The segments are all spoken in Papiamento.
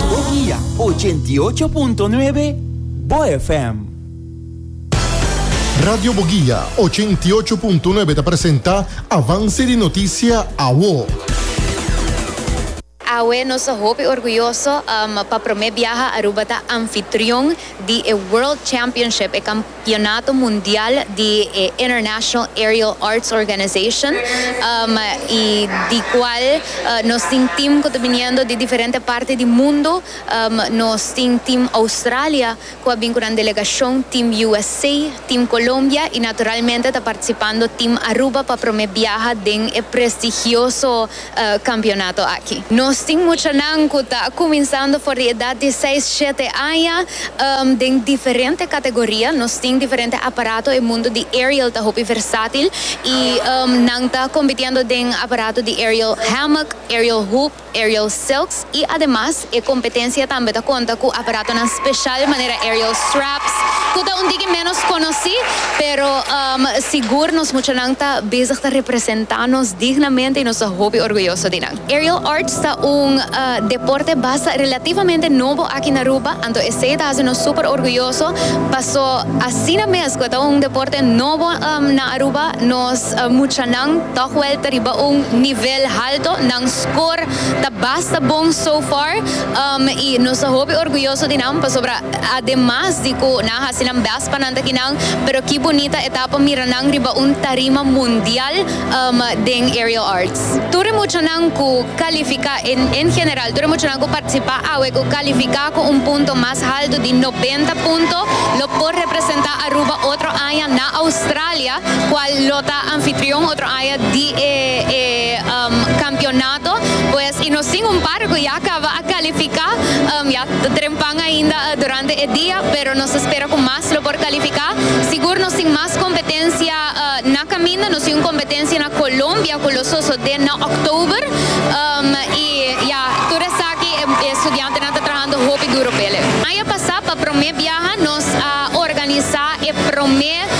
Bogia ochenta i ocho punto nuebe, bo FM. Radio Bogia ochenta i ocho punto nuebe ta presenta Avance di Noticia Awo. Awe nos ta hopi orguyoso pa prome biaha Aruba ta anfitrion di e World Championship, e. Campeonato Mundial di e International Aerial Arts Organization y di cual nos tin team cu ta biniendo di diferente parti di mundo. Nos tin team Australia cu a bin cu nan delegacion, team USA, team Colombia y naturalmente ta participando team Aruba pa prome biaha den e prestigioso kampionato aki. Nos tin muchanan ku ta kuminsando for di edat di seis, shete aña den diferente kategoria. Nos tin diferente aparato, e mundu di aerial ta hopi versatil i nan ta kompitiendo den aparato di aerial hammock, aerial hoop, aerial silks i ademas E kompetensia tambe ta konta ku aparatonan speshal manera aerial straps, ku ta un tiki ménos konosí, pero sigur nos muchanan ta bezig ta representá nos dignamente i nos ta hopi orguyoso di nan. Aerial arts ta un deporte basa relativamente nobo aki na Aruba, anto esei ta hasi nos súper orguyoso, paso asina mes ku e ta un deporte nobo na Aruba, nos muchanan tòg wèl ta riba un nivel halto, nan. Score ta basta bon so far y nos ta hopi orguyoso di nan pasobra ademas di cu nan a haci nan best pa nan ta kinan pero ki bunita etapa mira nan riba un tarima mundial den Aerial Arts. Tur e muchanan cu califica, en general tur e muchanan cu participa awe cu califica cu un punto mas halto di noventa punto lo por representa Aruba otro aña na Australia. cual lo ta anfitrion otro aña di e e um, campeonato, pues y nos tin un par cu ya caba a califica, um, ya ta trempan ainda uh, durante e dia, pero nos ta spera cu mas lo por califica. Sigur nos tin mas competencia uh, na caminda, nos tin un competencia na Colombia cu lo sosode na October, um, y ya tur esaki e, e studiantenan ta trahando hopi duro p'ele. Aña pasa pa prome biaha nos a organisa e prome. Ef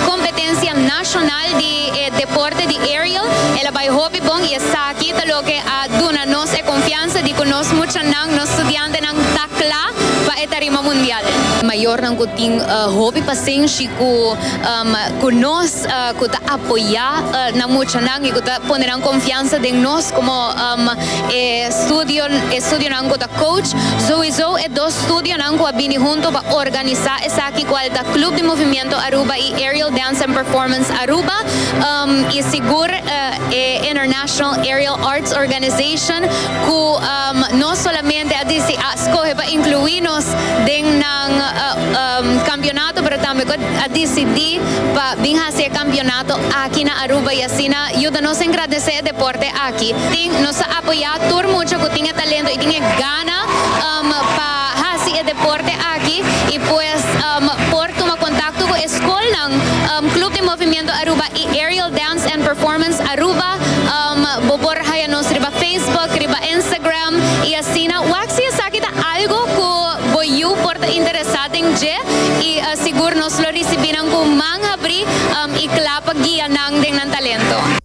competencia nacional di e deporte di aerial el a bay hopi bon y esaki ta loke a duna nos e confianza di cu nos muchanan, nos studiantenan ta cla pa e tarima mundial. Mayornan cu tin hopi pacenshi cu cu nos, cu ta apoya nan muchanan y cu ta pone nan confianza den nos como e studio e studionan cu ta coach, Zoe Zo. Dos studionan cu a bini hunto pa organisa esaki cual ta Club di Movimiento Aruba y Aerial Dance and Performance Aruba y sigur e International Aerial Arts Organization cu no solamente a dici a scoge pa inclui nos den nan campeonato pero tambe cu a dicidi pa bin haci e campeonato aki na Aruba y asina yuda nos engrandece e deporte aki tin nos ta apoya tur mucha cu tin e talento y tin e gana. Ana um pa hasi e deporte aki y pues um por tuma contacto cu e scolnan um Club di Movimiento Aruba y Aerial Dance and Performance Aruba um bo por haya nos riba Facebook, riba Instagram y asina wak si esaki ta algo cu bo yu por ta interesa den dje y sigur nos lo ricibi nan cu man habri um y cla pa guia nan den nan talento.